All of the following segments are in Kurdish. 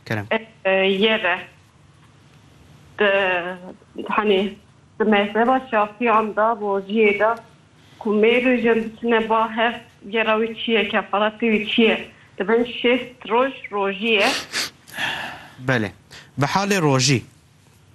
Kerem. Yê re di hanê di mezheba şafiyan de boziyê de ku mêr û jin diçine ba hev gera wî çi ye kefaretê wî çi ye di bin şêst roj rojî ye. Belê. Bi halê rojî.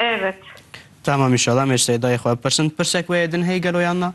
Evet. Tamam inşallah em ê ji Seydayê xwe bipirsin. Pirsek wê ê din hey gelo yan na?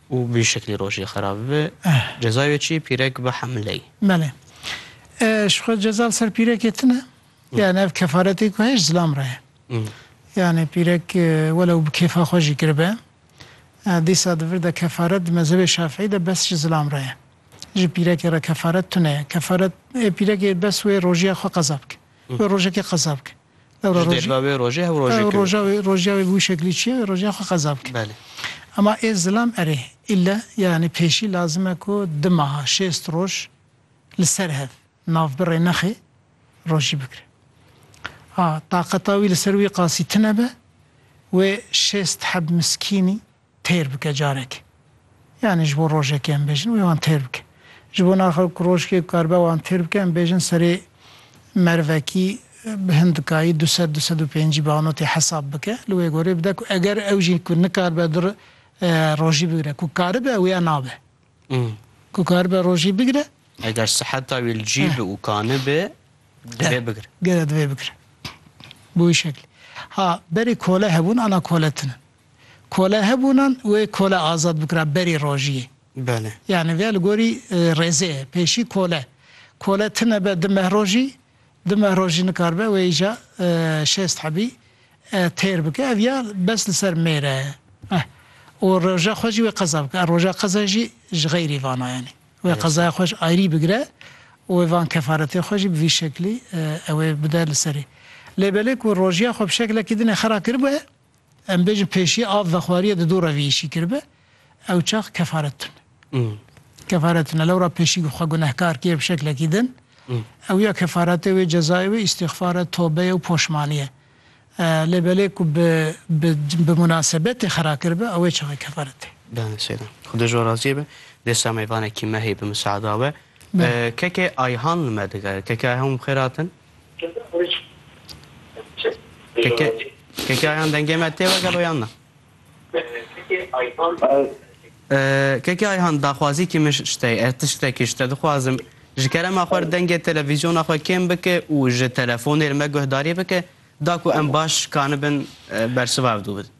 Û bi vî şeklî rojê xerab bibe. Cezayê wê çi ye? Pîrek bihemiley. Belê. Ji xwe ceza li ser pîrekê tune. Yani ev kefaretê ku heye ji zilam re ye. Yani pîrek welew bi kêfa xwe jî kiribe, dîsa di vir de kefaret di mezhebê şafîî de bes ji zilam re ye. Ji pîrekê re kefaret tune ye. Kefaret ê pîrekê bes wê rojiya xwe qeza bike. Wê rojekê qeza bike. Ji derva wê rojê hev rojê kewî. Roja wê, roja wê bi wî şeklî çi ye? Wê roja xwe qeza bike. Belê. Ema ê zilam erê, îlle yanî pêşî lazim e ku di meha, şêst roj li ser hev navbirê nexê rojî bikire. Ha, taqeta wî li ser wî qasî tune be, wê şêst heb miskînî, têr bike carekê. Yanî ji bo rojekê em bêjin wê wan têr bike. Ji bo naxa ku rojkê bikaribe wan têr bike em bêjin serê mervekî bi hin dikayî du sed du sed û pêncî banotê hesab bike. Li wê gorî bide ku eger ew jî ku nikaribe du rojî bigire ku karibe wî ya nabe. Ku karibe rojî bigire. Eger siheta wî li cî be û kanibe divê bigire. Gere divê bigire. Bi wî şeklê. Ha berê kole hebûn ana kole tune. Kole hebûnan wê kole azad bikira berî rojiyê. Belê. Yanî vê li gorî rêzê ye. Pêşî kole. Kole tine be di meh rojî, di meh rojî nikaribe wê îja şêst hebî têr bike. Ev ya bes li ser mêre ye. Eh. Û roja xwe jî wê qeza bike. Ev roja qezayê jî ji xeyrî vana yanî. Wê qezaya xwe ji ayrî bigire û wê van kefaretê xwe jî bi vî şeklî ewê bide li serê. Lê belê ku rojiya xwe bi şeklekî dinê xera kiribûe. Em bêjin pêşî av vexwariyê di dora vî îşî kiribe ew çax kefaret tune. Kefaret tune lewra pêşî xwe gunehkar kiye bi şeklekî din ew ya kefaretê wê cezayê wê îstîxfar e, tobe ye û poşmanî ye. Lê belê ku bi bi bi munasebetê xera kiribe ewê çaxê kefaret tê. Bale seyda. Xuda ji we razî be. Dê Semeyvanekî me heye bi miseada we. Kekê Ayhan li me digere. Kekê Ayhan bi xêr hatin. Kekayan dengê me tê we gelo yan na? Keke Ayhan daxwazî kî min ji te ye ez tiştekî ji te dixwazim ji kerema xwe dengê televîzyona xwe kêm bike û ji telefonê li me guhdarî bike da ku em baş kanibin bersiva ev du bidin.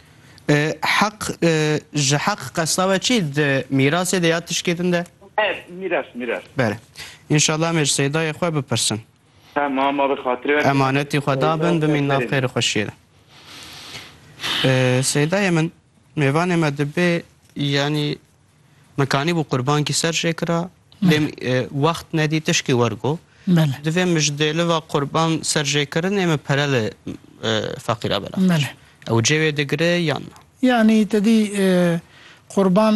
Heq ji heq qesta we çi di mîrasê de ya tişkê din de? Ev mîras mîras. Bere. Înşallah em ê ji Seydayê xwe bipirsin. Tamam abi xatirê we. Emanetî xwe dabin bimîn nav xêr û xweşiyê de. Seydayê min mêvanê me dibê yanî Min kanîbû qurbankî ser jê kira lê wext nedî tişkî wergo. Divê min ji dêliva qurban ser jê kirinê min pere li feqîra belav kir. Ew cê wê digire yan na? Yanî te dî qurban